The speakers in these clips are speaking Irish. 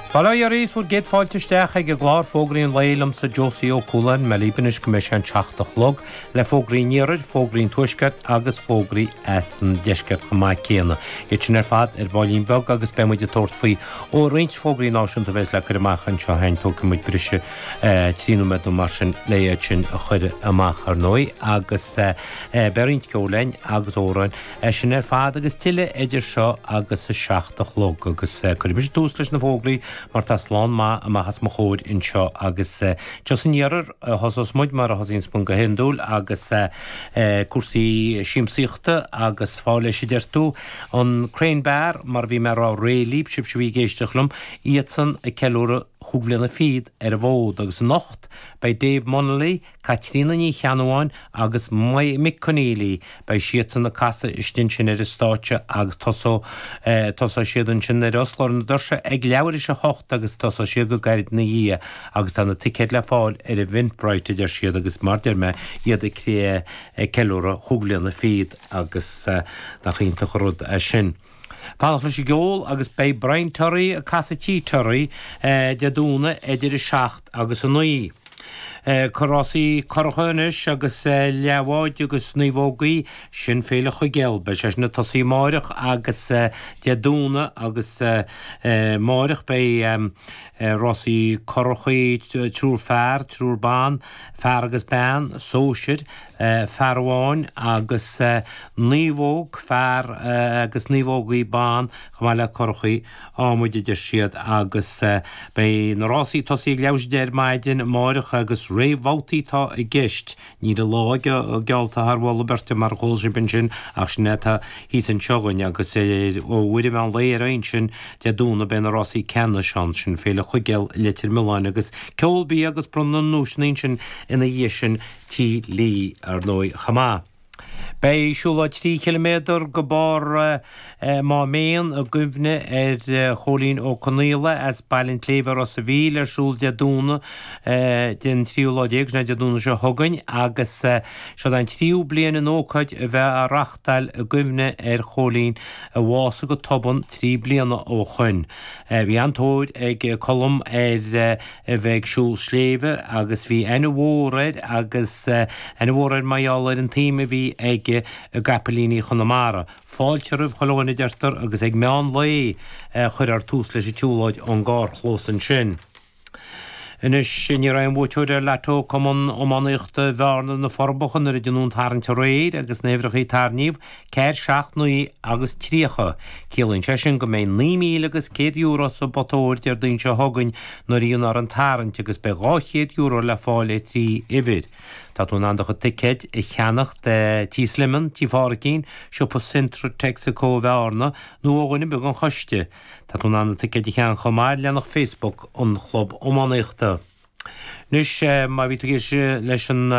Bail ó Dhia oraibh is bhur gcéad fáilte isteach ag an gclár Fógraí an Lae liomsa Josie Ó Cualáin, mé libh anois go mbeidh sé an 7 a chlog, le Fógraí an Iarthair, Fógraí an Tuaiscirt agus Fógraí as an Deisceart chomh maith céanna. Iad sin ar fad ar baillín beag agus beidh muid ag tabhairt faoi ó roinnt fógraí náisiúnta a bheas le cur amach anseo féin, tógfaidh muid breis is trí nóiméad nó mar sin le iad sin a chur amach ar ndóigh agus beidh roinnt ceoil linn agus amhráin. É sin ar fad agus tuilleadh idir seo agus a seacht a chlog agus cuirfidh mise tús leis na fógraí mar tá slám maith amach as mo chomhair anseo agus seo san iarthar a thosós muid mar a thosaíonns muid go hiondúil agus cúrsaí siamsaíochta agus fáil leis a deir tú, an Crane Bar mar a bhí mé a' rá aréir libh, sibhse a bhí ag éisteacht liom, iadsan ag ceiliúradh chúig bhliana fichead ar an bhfód agus anocht beidh Dave Munnelly, Caitríona Ní Cheannabháin agus Mick Conneely, beidh siadsan ag casadh istigh ansin ar an stáitse agus tosóidh tosóidh siad ansin nó fosclófar na doirse ag leathuair tar éis a hocht agus tosóidh siad go gairid ina dhiaidh agus tá na ticéid le fáil ar Eventbrite a deir siad agus mar deir mé iad ag cré ceiliúradh chúig bhliana fichead agus nach iontach an rud é sin. Fanacht leis an gceol agus beidh Brian Terry ag casadh Tigh Terry, Dé Domhnaigh idir 7 agus 9. Rásaí curracha anois agus leathbháid agus naomhógaí, sin Féile Chuigéal. Beidh sé sin ag tosaí amáireach agus Dé Domhnaigh agus amáireach beidh rásaí currachaí, triúr fear, triúr ban, fear agus bean, sóisir, fear amháin agus naomhóg fear agus naomhógaí ban chomh maith le curachaí ádhmaid a deir siad agus beidh na rásaí ag tosaí ag leathuair tar éis a deich ar maidin amáireach agus réamhbhabhtaí atá i gceist. Níl an lá geallta thar mholadh beirte mar a chuala sibh ansin ach sin é atá thíos anseo againn agus ó uair an mheán lae ar aghaidh ansin Dé Domhnaigh beidh na rásaí ceannais ann, sin Féile Chuigéal i Leitir Mealláin agus ceol bia agus bronnadh na nduaiseanna ansin ina dhiaidh sin. Tigh Lee ar ndóigh chomh maith. Beidh siúlóid trí chiliméadar go barr Máméan i gcuimhne ar Chóilín Ó Conaola as Baile an tSléibhe Ros a' Mhíl ar siúl Dé Domhnaigh den tríú lá déag, sin é Dé Domhnaigh seo chugainn, agus seo an tríú bliain an ócáid a bheith á reáchtáil i gcuimhne ar Chóilín a bhásaigh go tobann trí bliana ó shoin. Bhí an-tóir ag Colm ar. a bheith ag siúl sléibhe agus bhí aithne mhór air agus aithne mhór air mar gheall ar an tsuim a bhí aige i gCaipilíní Chonamara. Fáilte roimh chuile dhuine a deirtear agus ag meán lae a chuirfear tús leis an tsiúlóid ón gcarrchlós ansin. Anois ní raibh aon bhuaiteoir ar Lotto Cumann Iománaíochta Bhearna, Na Forbacha nuair a déanadh an tarraingt aréir agus na huimhreacha a tarraingníodh. 4 7 9 agus 30. Ciallaíonn sé sin go mbeidh naoi míle agus céad euro sa bpota óir Déardaoin seo chugainn nuair a dhéanfar an tarraingt agus beidh dhá chéad euro le fáil ar thrí uimhir. Tá tú in ann do chuid ticéid a cheannach de Tí Slemon, Tí Pháraicín, Siopa Centra, Texaco Bhearna nó ó dhuine ar bith den choiste. Tá tú in ann na ticéid a cheannach chomh maith ar leathanach Facebook an chlub iománaíochta. Anois, má bhí tú ag éisteacht leis an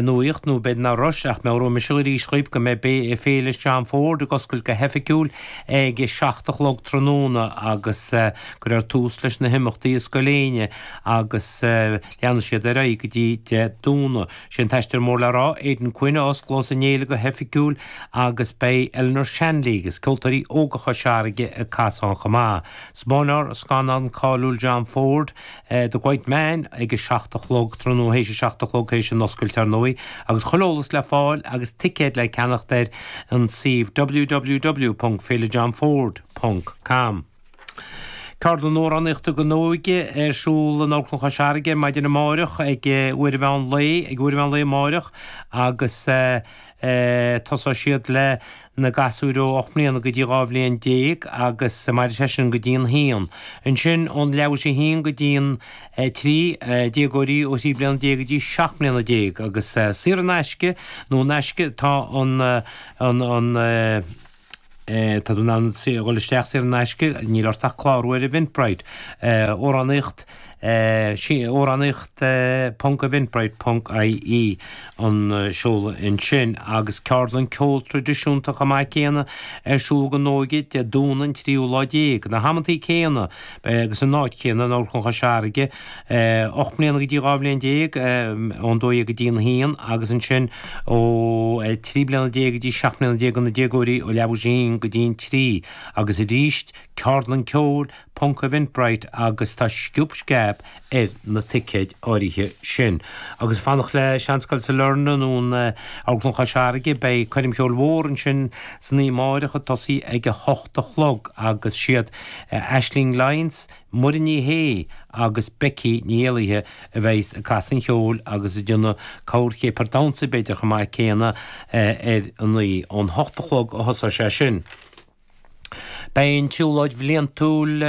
nuaíocht, nó b'fhéidir nach raibh, ach meabhróidh mise arís dhaoibh go mbeidh Féile John Ford ag oscailt go hoifigiúil ag a seacht a chlog tráthnóna agus cuirfear tús leis na himeachtaí i Scoil Éinne agus leanfaidh siad ar aghaidh go dtí Dé Domhnaigh. Sé an t-aisteoir mór le rá, Aidan Quinn a osclós an fhéile go hoifigiúil agus beidh Eleanor Shanley agus Ceoltóirí Óga Chois Fharraige ag casadh chomh maith. Spáinfear scannán cáiliúil John Ford, The Quiet Man ag a seacht a chlog tráthnóna, théis a seacht a chlog, théis an oscailt ar ndóigh, agus chuile eolas le fáil agus ticéid le ceannacht ar an suíomh www.féilejohnford.com. Ceardlann Amhránaíochta don Óige ar siúl in Amharclann Chois Fharraige maidin amáireach ag uair an mheán lae, ag uair an mheán lae amáireach agus. Tosóidh siad le na gasúir ó ocht mbliana go dtí dhá bhliain déag agus mairfidh sé sin go dtí an haon. Ansin ón leathuair théis a haon go dtí an trí, déagóirí ó thrí bliana déag go dtí seacht mbliana déag agus saor in aisce nó in aisce atá an, an, an, Tá tú in ann dhul isteach saor in aisce, níl ort ach clárú ar Eventbrite. Amhránaíocht Amhránaíocht ponc Eventbrite ponc IE an seoladh ansin agus ceardlann ceol traidisiúnta chomh maith céanna ar siúl don óige Dé Domhnaigh an tríú lá déag, na hamantaí céanna agus an áit chéanna in Amharclann Chois Fharraige. Ocht mbliana go dtí dhá bhliain déag, ón dó dhéag go dtí an haon, agus ansin ó trí bliana déag go dtí seacht mbliana déag do na déagóirí, ó leathuair théis a haon go dtí an trí, agus arís ceardlann ceoil, Ponc Eventbrite, agus tá sciob sceab ar na ticéid áirithe sin. Agus fanacht le Seanscoil Sailearna nó an Amharclann Chois Fharraige, beidh coirm cheoil mhór ansin san oíche amárach ag tosaí ag a hocht a chlog agus siad Aisling Lyons, Muireann Ní Shé agus Becky Ní Éallaithe a bheidh's ag casadh an cheoil agus ag déanamh corrchéapar damhsa b'fhéidir chomh maith céanna ar an oíche. Ón hocht a chlog a thosóidh sé sin. Beidh an tsiúlóid bhliantúil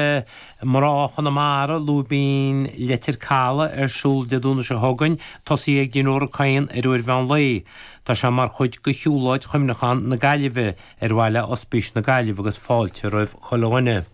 Mná Chonamara, Lúibín Leitir Calaidh ar siúl Dé Domhnaigh seo chugainn. Tosaí ag Dinnéar Ó Cadhain ar uair an mheán lae. Tá sé mar chuid de shiúlóid Chuimhneacháin na Gaillimhe ar mhaithe le Ospís na Gaillimhe agus fáilte roimh chuile dhuine.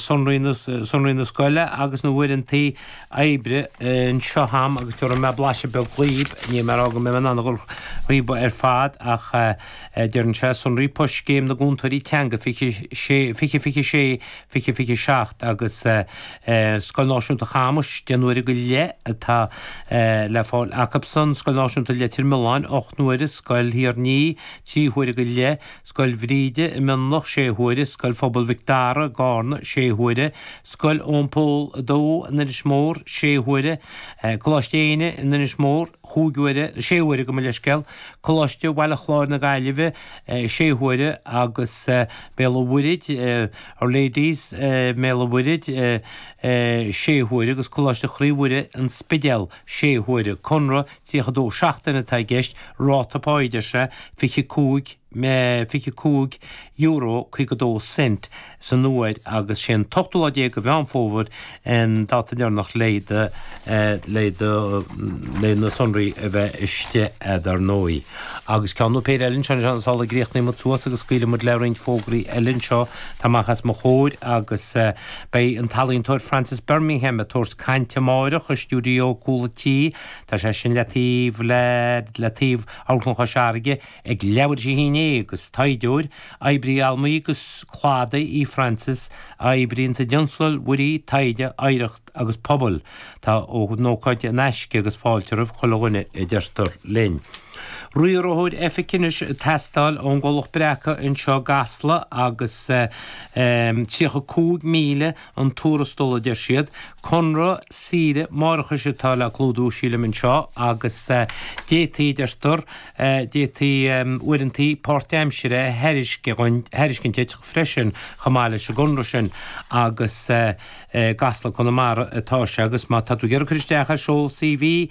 sonraí na scoile agus na uaireantaí oibre anseo a'm agus tabharfaidh mé blaiseadh beag dhaoibh, níl mé ag rá go mbeidh mé in ann a dhul thríob ar fad ach deireann sé, Sonraí Poist Scéim na gCúntóirí Teanga 2026 2027 agus Scoil Náisiúnta Chamuis, deich n-uaire go leith atá le fáil acub san, Scoil Náisiúnta Leitir Mealláin, ocht n-uaire, Scoil Rónáin, trí huaire go leith. Scoil Bhríde i Mionloch, 6 huaire, Scoil Phobail Mhic Dara i gCarna, 6 huaire, Scoil Eoin Pól 2 in Inis Mór, 6 huaire, Coláiste Naomh Éinne in Inis Mór, 5 huaire, 6 huaire gabh mo leithscéal, Coláiste Bhaile Chláir na Gaillimhe, 6 huaire, agus Béal an Mhuirthid, Our Lady's i mBéal an Mhuirthid, 6 huaire, agus Coláiste Chroí Mhuire, An Spidéal, 6 huaire. Conradh 32 seachtaine atá i gceist, ráta páighe, deir sé, €25.52 san uair agus sé an t-ochtú lá déag de Mheán Fómhair an dáta deireanach le do, le do, le na sonraí a bheith istigh a'd, ar ndóigh. Agus ceann nó péire eile anseo is ansin sula gcríochnóidh muid suas agus scaoilfidh muid le roinnt fógraí eile anseo atá amach as mo chomhair agus beidh an t-ealaíontóir Frances Bermingham ag tabhairt cainte amáireach i stiúideo Cúl a' Tí Tá sé sin le taobh le le taobh Amharclann Chois Fharraige ag labhairt ó shin é agus taighdeoir, oibrí allamuigh agus cladaigh í Frances a oibríonn sa dtionscal muirí, taighde, oidhreacht agus pobal. Tá an ócáid in aisce agus fáilte roimh chuile dhuine a deirtear linn. Riarthóir Oifige anois ag teastáil ón gcomhlacht Breacadh anseo i gCasla agus €35,000 an tuarastal a deir siad, conradh saoire máithreachais atá le clúdú sílim anseo agus d'fhéadfaí a deirtear, d'fhéadfaí uaireantaí páirtaimsire a thairiscint duit freisin chomh maith leis an gconradh sin agus i gCasla, Conamara atá sé agus má tá tú ag iarraidh cur isteach air seol CV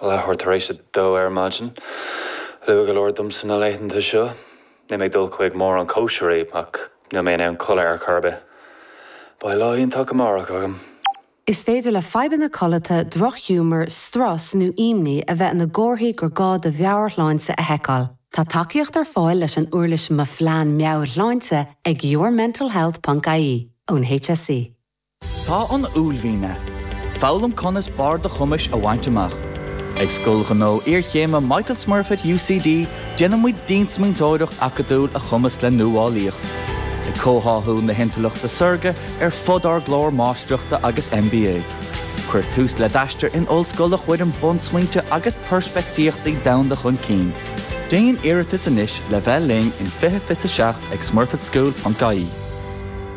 Leathuair tar éis a dó ar maidin. Luath go leor dom sna laethanta seo. Níl mé ag dul chuig mórán cóisirí ach níl mé in ann codladh ar chor ar bith. Beidh lá tábhachtach amárach agam. Is féidir le fadhbanna codlata, droch-ghiúmar, strus nó imní a bheith ina gcomharthaí gur gá do mheabhairshláinte a sheiceáil. Tá tacaíocht ar fáil leis an uirlis Mo Phlean Meabhairshláinte ag yourmentalhealth.ie ón HSE. Tá an uaillmhian ann. Foghlaim conas barr do chumais a bhaint amach. Ag Scoil Ghnó Iarchéime Michael Smurfit UCD déanaimid diansmaointeoireacht acadúil a chumasc le nuálaíocht, ag comhtháthú na hintleachta saorga ar fud ár gclár Máistreachta agus MBA. Cuir tús le d'aistear in ollscoil a chuireann bunsmaointe agus peirspictíochtaí domhanda chun cinn. Déan iarratas anois le bheith linn in 2027 ag smurfitschool.ie.